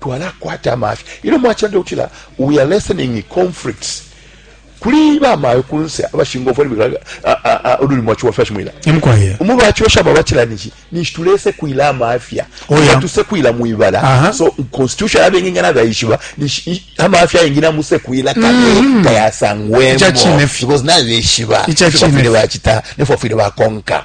twalakwata amafya ino mwachanda utila we are lessening conflicts kuli ba mayo kunse abashingo fwe bikala ululi mwachi wa fashion mwila imkwaye umu bachi osha ba bachila nishi nishi tulese kuila amafya oh, oya tuse kuila muibala uh -huh. so constitution abe nginga na baishiba nishi amafya ingina muse kuila kale mm -hmm. kaya sangwemo because na baishiba icha chine bachita nefo fwe ba konka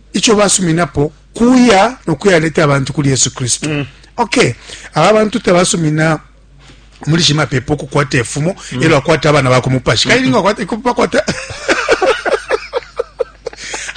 ico basuminapo kuya no kuyaleta abantu kuli Yesu Kristo mm. okay aba bantu tabasumina muli shimapepo okukwata efumo mm. elo akwata abana bakumupashi mm. kailinga akwata ikupakwata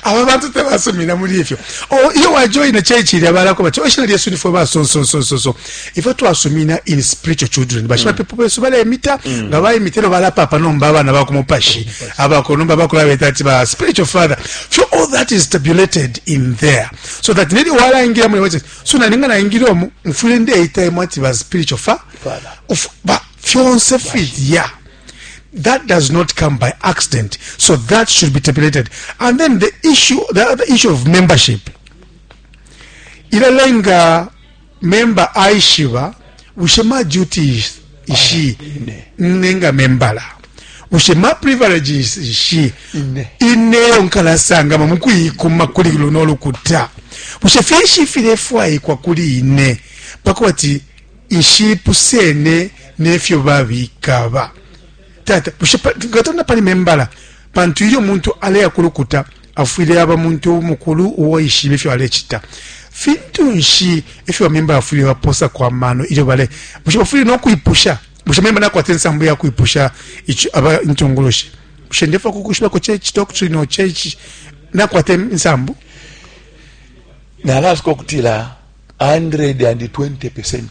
aba bantu tabasumina muli ifyo oh, iyo wajoina church ilya balako bati oshina oh, lyesu nifwe basonsonsonsoso ifyo twasumina in spiritual children bashimapepo mm. besu balemita mm. nga baimita elyo balapapa nomba abana bakumupashi abako nomba bakulabeta ati ba spiritual father fyo all that is tabulated in there so that nelyo walaingira muli wati so naninga naingira omu mfwile ndeitaemu ati ba spiritual fa fyonse filya that does not come by accident so that should be tabulated and then the issue the other issue of membership ilalenga memba aishiba bushe ma duties ishi ne nga membala bushe ma privileges ishi ineyo nkalasangama mu kuikuma kuli luno lukuta bushe finshi filefwaikwa kuli ine pakuba ti nshipusene nefyo babikaba tata bushe ngatona pali membala pantu ilyo muntu aleya kulukuta afwile aba muntu mukulu uwo ishibe ifyo alecita fintu nshi ifyo bamemba bafwile baposa kwa mano ilyo bale bushe bafwile no kwipusha bushe memba nakwata ensambu ya kwipusha aba intungulushi bushe ndefa kukushibako chechi doctrine o chechi nakwata ensambu nalasuka okutila 120 percent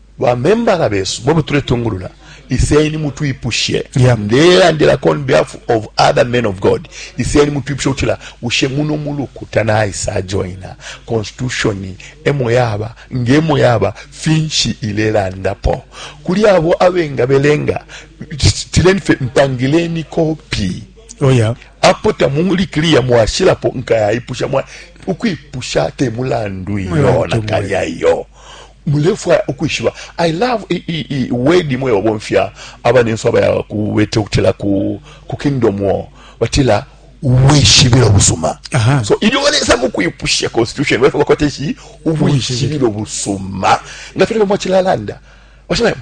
Ba membala besu mwebo tuletungulula iseni mutwipushe yeah. ndelandilako on behalf of other men of god iseni mutwipushe utila ushe muno mulukuta naisa joina constitution emo yaba ngemo yaba finshi ilelandapo kuli abo abenga belenga tileni fe mpangileni kopi oh yeah. apo tamuli clear mwashilapo nkayayipusha mwa ukwipusha temulandu iyo nakalya iyo mulefwaya ukwishiba i love i, i, i word imwe babomfya abanensu abaya kubete ukutila ku, ku kingdom war batila ubwishibilo busuma Aha. so ilyo balesa mukwipusha constitution balefwa bakwata ici ubwishibilo busuma nga file bamwacilalanda bashilaemo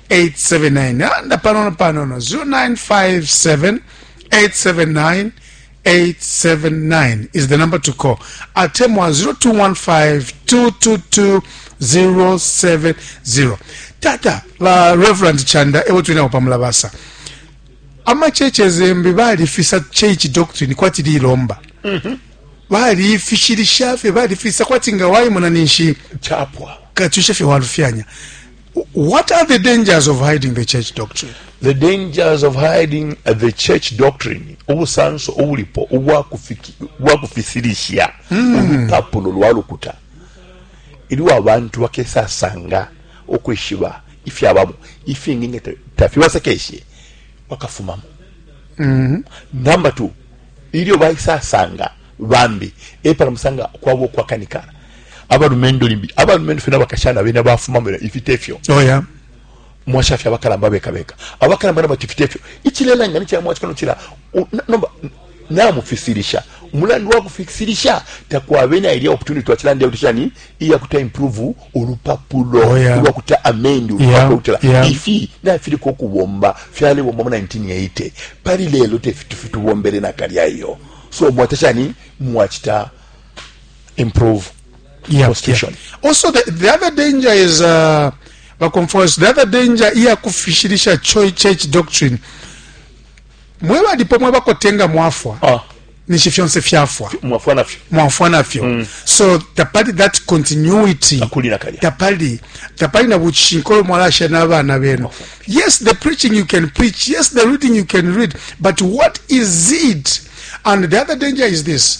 879 anda panono panono 0957 879 879 is the number to call atemwa 0215222070 tata ba reverend chanda ewo twinako pamulabasa amacheche zembi balifisa church doctrine kwati lilomba mm -hmm. balifishilisha fye balifisa kwati nga wayimona ninshi chapwa katushe fye walufyanya What are the dangers of hiding the church doctrine? The dangers of hiding uh, the church doctrine ubusanso ubulipo ubwakufisilisha hmm. ulupapulo lwa lukuta iliwo abantu bakesasanga ukwishiba ifyabamo ifingi nga tafibasekeshe bakafumamo mm-hmm. namba t ilyo baisasanga bambi epala musanga kwaba okwakanikana abalumendo limbi abalumendo fena bakashana bena bafuma mwe ifite fyo oh yeah mwasha fya bakalamba beka beka abakalamba na batifite fyo ichilela ngani cha mwachi kano chila nomba na mufisirisha mulandu wa kufisirisha takwa bena ili opportunity wa chilande utisha ni iya kuta improve ulupapulo oh yeah. kuta amend ulupapulo yeah. yeah. yeah. ifi na fili kwa kubomba fyale bomba mu 1980 pari lelo te fitu fitu bombele na kari ayo so mwatasha ni mwachita improve yeah, constitution yeah. also the, the other danger is uh, baconfers the other danger iya kufishilisha church doctrine mwe balipo mwe bakotenga mwafwa ah. nishi fyonse fyafwa mwafwa nafyo mwafwa nafyo mm. so tapali that continuity akulira kanya tapali tapali na buchinkolo mwalasha na bana benu yes the preaching you can preach yes the reading you can read but what is it and the other danger is this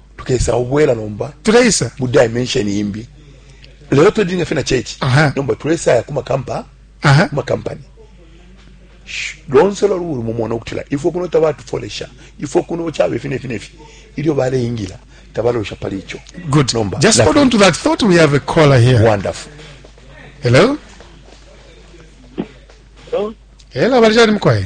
tukesa ubwela nomba tukesa mu dimension imbi lelo to dinga fena church Aha. nomba tulesa ya kuma kampa aha kuma company Sh- lonse lwa lulu mumona ukutila ifo kuno tabatufolesha ifo kuno chabe fine fine fi ilyo baleyingira tabalosha pali icho good Nomba, just that- hold on to that thought we have a caller here wonderful hello Hello? hello bali chani mkwaye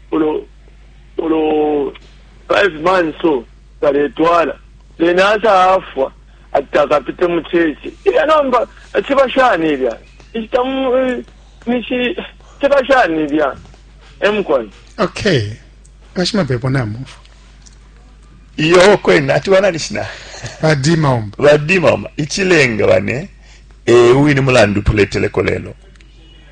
ulo ulo 5 months so baletwala then asa afwa atakapite mu church ilya nomba achiba shani ilya ichita nishi chiba shani ilya emkwan okay kashima pepo namo iyo kwena ati wana nishina badima omba badima omba ichilenga bane eh uyu ni mulandu tuleteleko lelo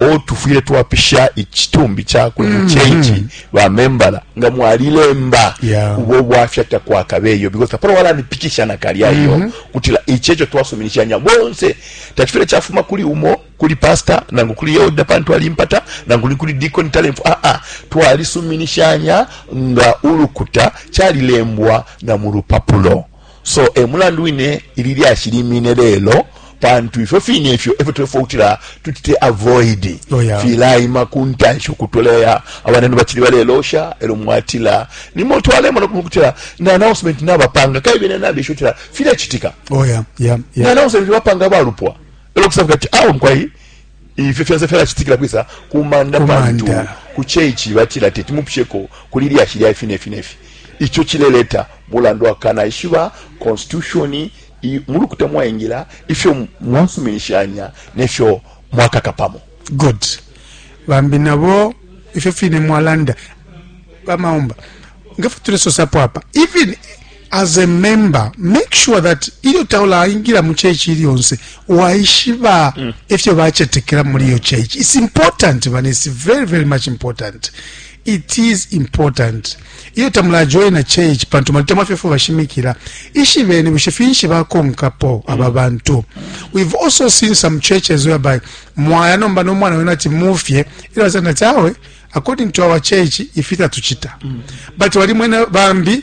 o tufwile twapisha ichitumbi chakwe mm. muchechi mm. ba membala nga mwalilemba yeah. ubo bwafya takwakabeyo because apolo wala nipikisha na kali ayo mm -hmm. kutila ichecho twasuminishanya bonse tachifile chafuma kuli umo kuli pastor nangu kuli yoda pantu alimpata nangu ni kuli deacon talent ah ah twalisuminishanya nga ulukuta chalilembwa na murupapulo So e mulandu wine ili lyashi limine lelo pantu ifyo fine ifyo efyo tulefo kutila tutite avoid oh, yeah. filaima ku ntanshi ukutoleya abanenu bacili balelosha elo mwatila nimo twalemona kutila na announcement nabapanga kaye bene nabisho tila filachitika oh, yeah. yeah. yeah. na announcement bapanga balupwa elo kusaba kati awo ah, mkwai Ifi fyonse fyalachitikila kwisa kumanda, kumanda pantu ku church batila teti mupsheko kuli lyashi lya ifi nefi nefi icho chileleta mulandu akana ishiba constitution mulukuta mwaingila ifyo mwasuminishanya nefyo mwakaka pamo good bambi nabo ifyo fine mwalanda bamaomba ngefyo tulesosapo apa even As a member, make sure that ilyo taulaingila mu church iliyonse waishiba mm. efyo bachetekela muli iyo church. It's important, man. It's very, very much important. It is important. Iyo tamula join a church, pantu malitama fefu vashimikila. Ishi veni, wishi finshi vako mkapo mm. ababantu. We've also seen some churches whereby mwaya nomba no mwana wena ti mufye. Ilo wazana tawe, according to our church, ifita tuchita. Mm. But wali mwena bambi,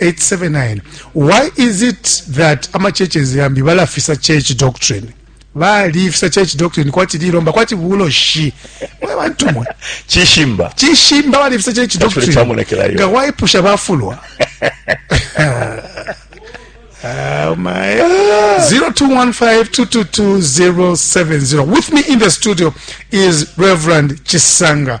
879 why is it that ama churches yambi balafisa church doctrine balifisa church doctrine kwati lilomba kwati buloshi mwe bantu mwe chishimba chishimba balifisa church doctrine nga waipusha bafulwa Oh my. 0215222070. With me in the studio is Reverend Chisanga.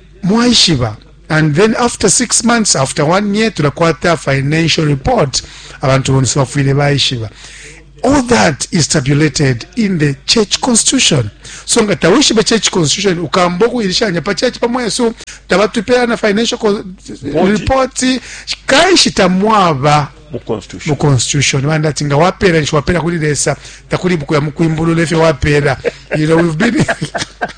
mwaishiba and then after six months after one year tulakwata financial report abantu bonse bafwile baishiba all that is tabulated in the church constitution so nga tawishibe church constitution ukamba ukuilishanya pa church pamwe yesu tabatupeyana financial report kanshi tamwaba mu constitution bandi ati nga wapeera nshi wapeera kuli lesa takuli bukuya mukwimbulula efyo wapeera you know, we've been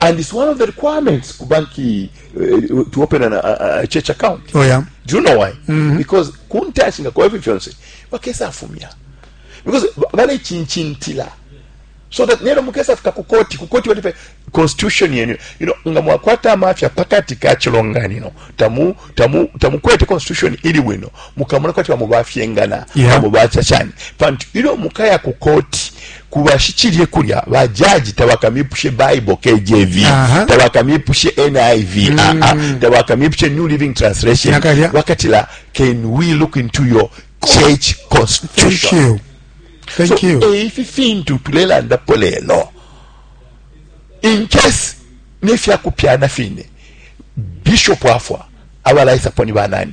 and it's one of the requirements ku banki uh, to open an, a, a church account oh, yeah. do you know why mm -hmm. because kuntashi nga kwa fyonse bakesa afumya because bale chinchintila so that nero mukesa fika ku koti ku koti walipe constitution yenu you know nga mwakwata amafya pakati ka chilonganino tamu tamu tamu kwete constitution ili wino mukamuna kwati wa mubafyengana yeah. mubachachani pantu ilo mukaya ku koti kuba shicilye kulya ba judge tabakamipushe bible KJV tabakamipushe NIV mm. a ah, ah. tabakamipushe New Living Translation wakatila can we look into your church constitution thank you thank so, you eh, ifi fintu tulelandapo lelo in case nefyakupyana fine bishop afwa abalaisapo ni banani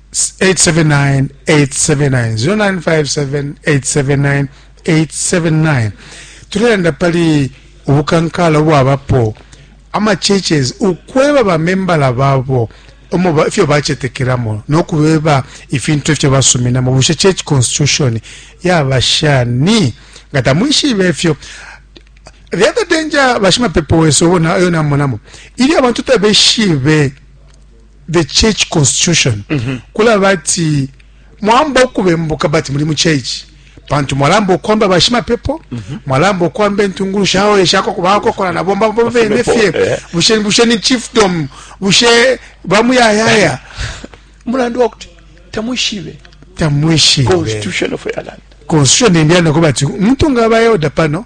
879 879 tulelanda pali ubukankala ubwabapo ama churches ukweba bamembala babo omo ifyo bacetekelamo nokubeba ifintu ifyo basuminamo bushe church constitution yaba shani nga tamwishibe ifyo the other danger bashimapepo wesu obo nayo namonamo ili abantu tabeshibe the church constitution mm -hmm. kula bati mwamba okubembuka bati muli mu church pantu mwalamba okwamba bashimapepo mm -hmm. mwalamba okwamba entungulu shawo eshako kubakokola na bomba bomba bene fye eh. bushe bushe ni chiefdom bushe bamuyayaya mulandu wakuti tamwishibe tamwishibe constitution of ireland constitution nendiyana kubati mtu ngabayoda pano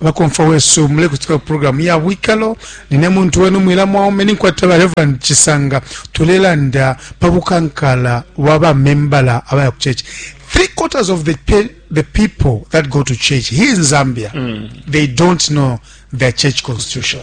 bakomfwa wesu mulekutika ku programu ya bwikalo nine muntu wenu mwila mwaume ninkwata ba reverend chisanga tulelanda pa bukankala bwa bamembala abaya ku church three quarters of the, pe the people that go to church here in zambia mm. they don't know their church constitution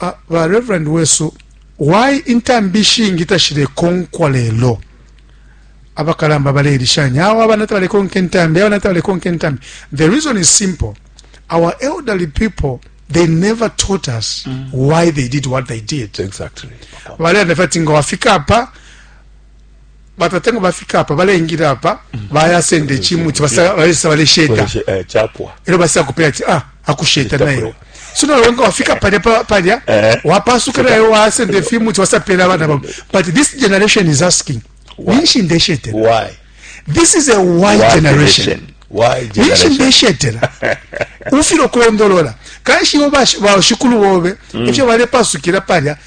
Ah, ba Reverend wesu, why intambi ishingi tashilekonkwa lelo? abakalamba balelishanya awo abana tabalekonka intambi abana tabalekonka intambi the reason is simple our elderly people they never taught us mm. why they did what they did exactly balelanda fati nga wafika apa batata nga bafika apa balengila apa mm. bayasenda ekimuti balesa balesheta eh, era basa kupera ti ah, akusheta nayo so nawe nga wafika palya palya eh. wapasuka nayo wasenda efimuti wasapera abana babo but this generation is asking ninshi ndeshetera this is a why generation ninshi ndeshetera ufira okulondolola kanshi iwe bashikulu bobe ifyo mm. balepasukira palya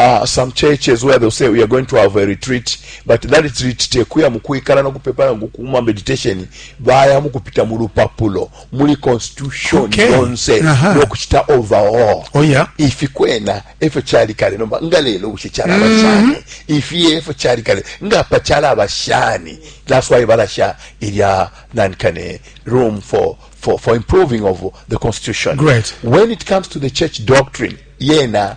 uh, some churches where they'll say we are going to have a retreat but that retreat tekuya mu kwikala no kupepa no kuma meditation baya mu kupita mu lupapulo muli constitution okay. yonse no kuchita overall oh yeah ifi kwena efyo chali kale nomba nga lelo bushe chala mm -hmm. bashani ifi efyo chali kale nga pa chala bashani that's why balasha ilya nankane room for for for improving of the constitution great when it comes to the church doctrine yena yeah,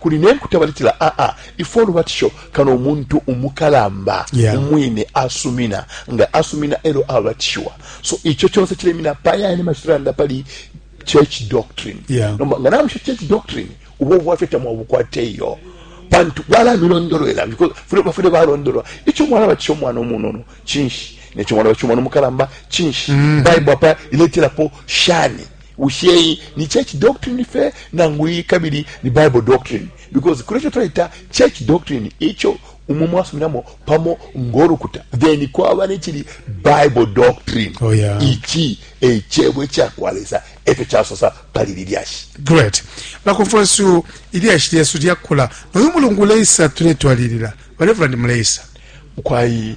kuli ne nkuta baletila aa ah, ah, ifwe olubatisho kano umuntu umukalamba yeah. umwine asumina nga asumina elo abatishiwa so ico conse cilemina payane mashiranda pali church doctrine yeah. nomba nga namusha church doctrine ubo bwaffe tamwabukwate iyo pantu bwalamilondolwera bafune balondolwa ico mwana batisha omwana omunono cinshi neco mwana batisha omwana omukalamba cinshi mm. bible apa ileterapo shani Bushe iyi ni church doctrine fe nangu iyi kabili ni Bible doctrine? Because kule cho twaita church doctrine icho umo mwasuminamo pamo ngolukuta then kwaba nechili Bible doctrine. Oh, yeah. Ichi echebwe cha kwa Lesa echo chasosa pali lilyashi. Great. La konfwensu ilyashi lyesu lyakula. Noyu mulungu leisa tuletwalilila. Reverend Mleisa. Kwa hii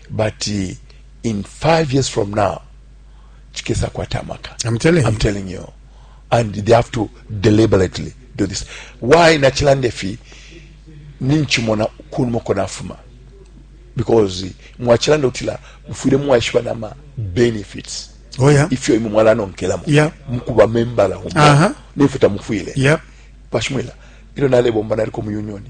but uh, in five years from now chikesa kwata amaka I'm telling you. I'm telling you and they have to deliberately do this why nachilande fi ninchimona kunumoko nafuma because mwachilande utila mufwire mwaishiba nama benefits oh, yeah. ifyo imwe mwalanonkelamo yeah. mukuba membala humo uh -huh. nefyo tamufwire yeah. pashimwila ilyo nalebomba naliko mu unioni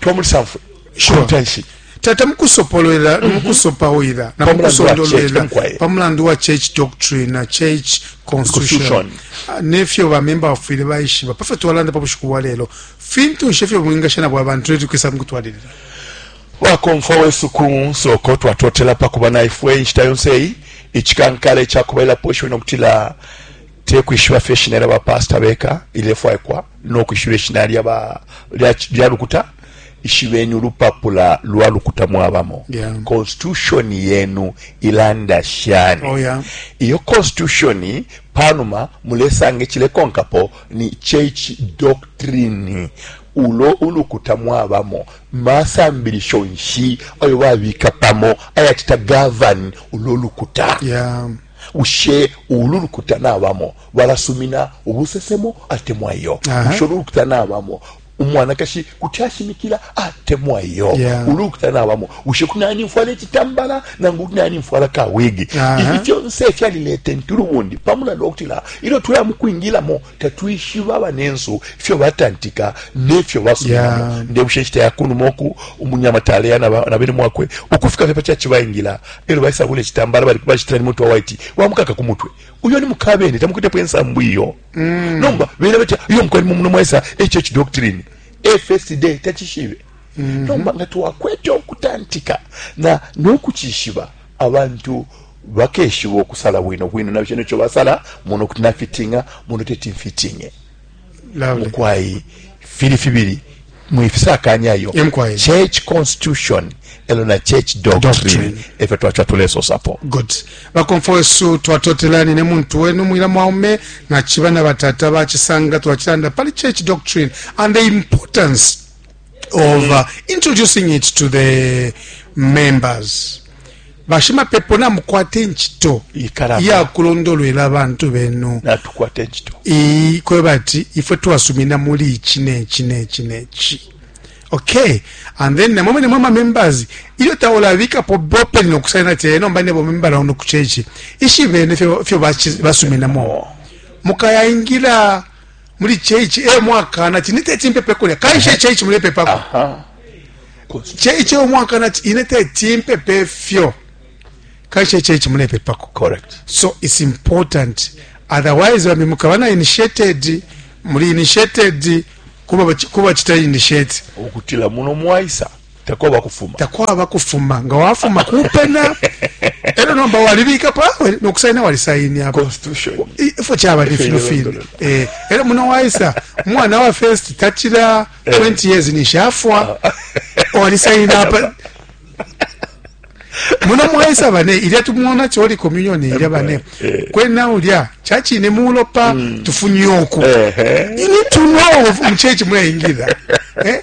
twa muli sanfwe shontanshi tata mukusopolwela mhm. mukusopawila na mukusondolwela pa mulandu wa church doctrine na church constitution ah, nefyo bamemba bafwile bayishiba pafyo twalanda pa bushiku bwa lelo fintu nshe fyo bwingasha nabwo abantu leti kwisa mukutwalilila wakomfwa wesu ku nsoko twatotela pa kuba naifwe inshita yonse eyi icikankala icakubalilapo ishiwe nokutila tekwishiba fye ishina lya bapasta beka ilefwaikwa no kwishiba ishina lya ba lya, lya lukuta ishibeni ulupapula lwa lukuta mwabamo yeah. constitution yenu ilanda shani oh, yeah. iyo constitution panuma mulesanga ichilekonkapo ni church doctrine ulo ulukuta mwabamo masambilisho nshi ayo babika pamo ayachita govern ulo lukuta yeah. ushe ulu lukuta nabamo balasumina ubusesemo atemwa iyo busho lukuta nabamo umwanakashi kuti ashimikila atemwa iyo yeah. ulukuta nabamo bushe kunani mfwala ekitambala nangu kunani mfwala kawigi uh -huh. ifi fyonse fyalileta entulubundi pamulanda okutila ilyo twaya mukwingilamo tatwishiba banensu ifyo batantika nefyo basumamo yeah. ndebushe nshita yakunuma oku umunyama taleya na bene mwakwe ukufika fye pacaci bayingila elyo baisabula ekitambala bali bacitila ni mutwe waiti wamukaka ku mutwe uyo ni mukabene tamukitepo ensambu iyo mm. nomba bena batya iyo mukwali mumuno mwaisa hh doctrine fsd takishibe mm -hmm. nomba nga twakwete okutantika na nokukishiba abantu bakeshiba okusala bwino bwino nabyo nekyo basala muno kuti nafitinga muno teti mfitinge mukwai fili fibili mwifisakanya yo church constitution elo na church doctrine efyo twacha tulesosapo good bakomfo wesu twatotelani ne muntu wenu mwila mwaume na chiba na batata bachisanga twachilanda pali church doctrine and the importance of uh, introducing it to the members bashimapepo namukwata encito yakulondolwela abantu benu kweba ati ifwe twasumina muli iki neki neki neki okay and then namwe mwene mwama members ilyo taulabikapo bopeni nokusaina ati eh, nomba nebo membala uno kuchechi ishibene fyo basuminamo mukayaingira muli church e mwakana ti niteti mpepe kulya kaishe church mulepepako church e mwakana ti ineteti mpepe fyo kaishe church mulepepako correct so it's important otherwise bambi mukaba na initiated muli initiated kuba kuba chita initiate okutila muno mwaisa takwaba kufuma takwaba kufuma nga wafuma kupena ero nomba walibika pa no kusaina wali saini ya constitution ifo chaba ni fino fino eh ero muno waisa mwana wa first tachira 20 eh. years ni shafwa ah. wali saini apa muno mwaisa bane ilya tumwona choli communion ilya bane eh. kwena ulya chachi ni mulopa mm. tufunyoku you need to know mchechi mwaingira eh